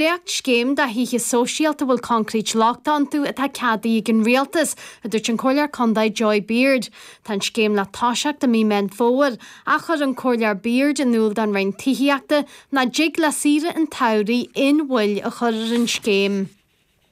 Dréachtscéim do thithe sóisialta a bhfuil concrete lochtach iontu atá ceadaithe ag an rialtas, a dúirt an Comhairleoir Contae Joy Beard. Tá an scéim le toiseacht i mí Meán Fómhair ach chuir an Comhairleoir Beard in iúl don Roinn Tithíochta nach dtig le saoire an tsamhraidh aon mhoill a chur ar an scéim.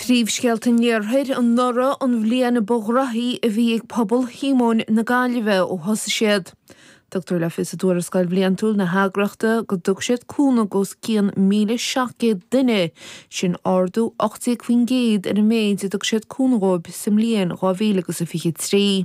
Príomhscéalta an Iarthair anuraidh an bhliain ba ghnóthaí a bhí ag Pobal Shíomóin na Gaillimhe ó thosaigh siad. Tugtar le fios i dtuarascáil bhliantúil na heagraíochta go dtug siad cúnamh d'os cionn 1,700 duine, sin ardú 18% ar an méid a dtug siad cúnamh dhóibh sa mbliain 2023.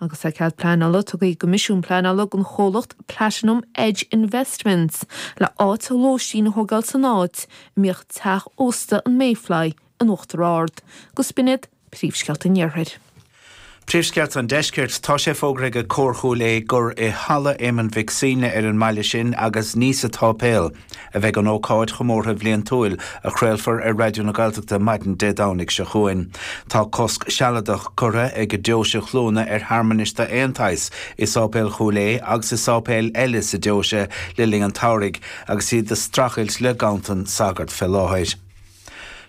Agus tá cead pleanála tugtha ag an gCoimisiún Pleanála don chomhlacht Platinum Edge Investments le háit lóistín a thógáil san áit a mbíodh teach ósta an Mayfly in Uachtar Ard, agus b'in iad, Príomhscéalta an Iarthair. Príomhscéalta an Deiscirt, Tá sé fógartha ag Comhar Chúil Aodha gur i Halla Éamoinn Mhic Suibhne ar an mbaile sin agus ní sa tSáipéal, a bheidh an ócáid chomórtha bhliantúil a chraolfar ar Raidió na Gaeltachta maidin Dé Domhnaigh seo chugainn. Tá cosc sealadach curtha ag Deoise Chluana ar shearmanais d'aon tsaghas i Sáipéal Chúil Aodha agus i sáipéil eile sa deoise le linn an tsamhraidh agus iad ag strachailt le ganntanas sagart fé láthair.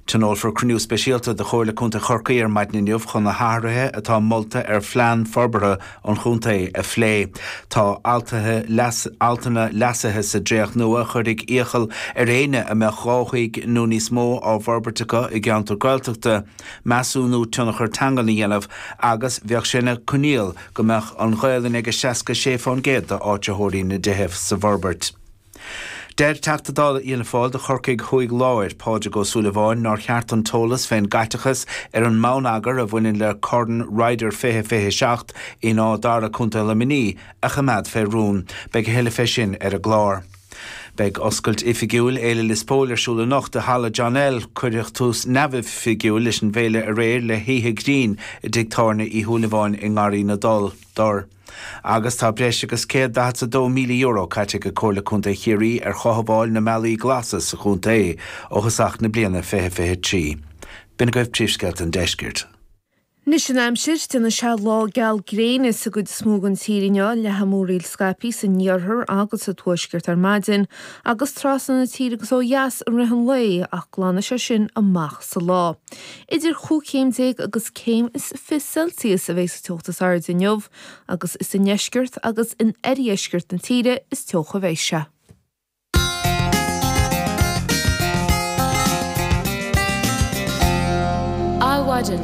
Tionólfar cruinniú speisialta de Chomhairle Contae Chorcaí ar maidin inniu chun na hathruithe atá molta ar phlean forbartha an chontae a phlé. Tá altanna leasaithe sa dréacht nua a chuirfeadh iachall ar éinne a mbeadh dhá thigh nó níos mó á bhforbairt acu i gceantar Gaeltachta measúnú tionchar teangan a dhéanamh agus bheadh sé ina coinníoll go mbeadh an Ghaelainn ag 66% d'áitritheoirí na dtithe sa bhforbairt. Deir Teachta Dála Fhianna Fáil do Chorcaigh Thuaidh Láir, Pádraig Ó Súilleabháin, nár cheart an t-eolas fén gcaiteachas ar an mbonneagar a bhaineann le Corn Ryder 2027 in Áth Dara, Co Luimnigh, a choimeád fé rún. Beidh a thuilleadh fé sin ar an gclár. Beidh oscailt oifigiúil Fhéile Lios Póil ar siúl anocht i Halla John L. Cuireadh tús neamhoifigiúil leis an bhféile aréir le hoíche ghrinn i dtigh tábhairne Uí Shúilleabháin i nGarraí na dTor. Agus tá breis agus €142,000 caite ag Comhairle Contae Chiarraí ar chothabháil na mbealaí glasa sa chontae ó thosach na bliana 2023. B'in agaibh príomhscéalta an deiscirt. Anois an aimsir. Déanfaidh sé lá geal gréine sa gcuid is mó den tír inniu, le ceathanna múraíl scaipthe san iarthar agus sa tuaisceart ar maidin agus trasna na tíre go dtí ó dheas i rith an lae ach glanfaidh sé sin amach sa lá. Idir chúig chéim déag agus céim is fiche Celsius a bheidh sa teocht is airde inniu, agus is i ndeisceart agus in oirdheisceart na tíre is teocha a bheidh sé. Adhmhaidin.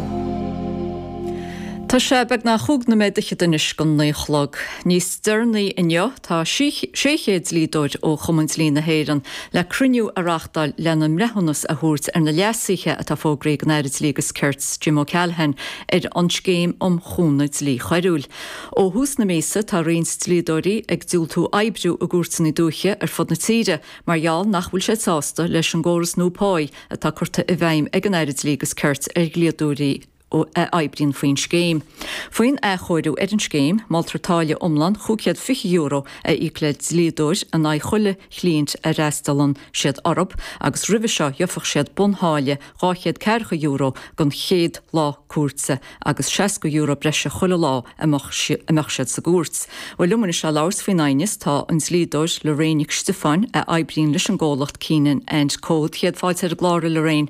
Tá sé beagnach a cúig nóiméad fichead anois chun a naoi a chlog. Níos deireanaí inniu, Tá 600 dlíodóir ó Chumann Dlí na hÉireann le cruinniú a reáchtáil lena mbreithiúnas a thabhairt ar na leasuithe atá fógraithe ag an Aire Dlí agus Cirt, Jim O'Callaghan, ar an Scéim um Chúnamh Dlí Choiriúil. Ó thús na míosa, tá roinnt dlíodóirí ag diúltú oibriú i gcúirteanna dúiche ar fud na tíre mar gheall nach bhfuil siad sásta leis an gcóras nua páí atá curtha i bhfeidhm ag an Aire Dlí agus Cirt ar dhlíodóirí a a oibríonn faoin scéim. Faoin athchóiriú ar an scéim, moltar táille iomlán €520 a íoc le dlíodóir in aghaidh chuile chliaint a fhreastalann siad orthu agus roimhe seo gheofadh siad buntháille dhaichead ceathracha euro don chéad lá cúirte agus seasca euro breise chuile lá a mbeadh siad sa gcúirt. Bhuel, liom anois le labhairt faoin aighneas tá an dlíodóir Lorraine Nic Stiofáin a oibríonn leis an gcomhlacht Keenan and Co. Céad fáilte ar an gclár, a Lorraine.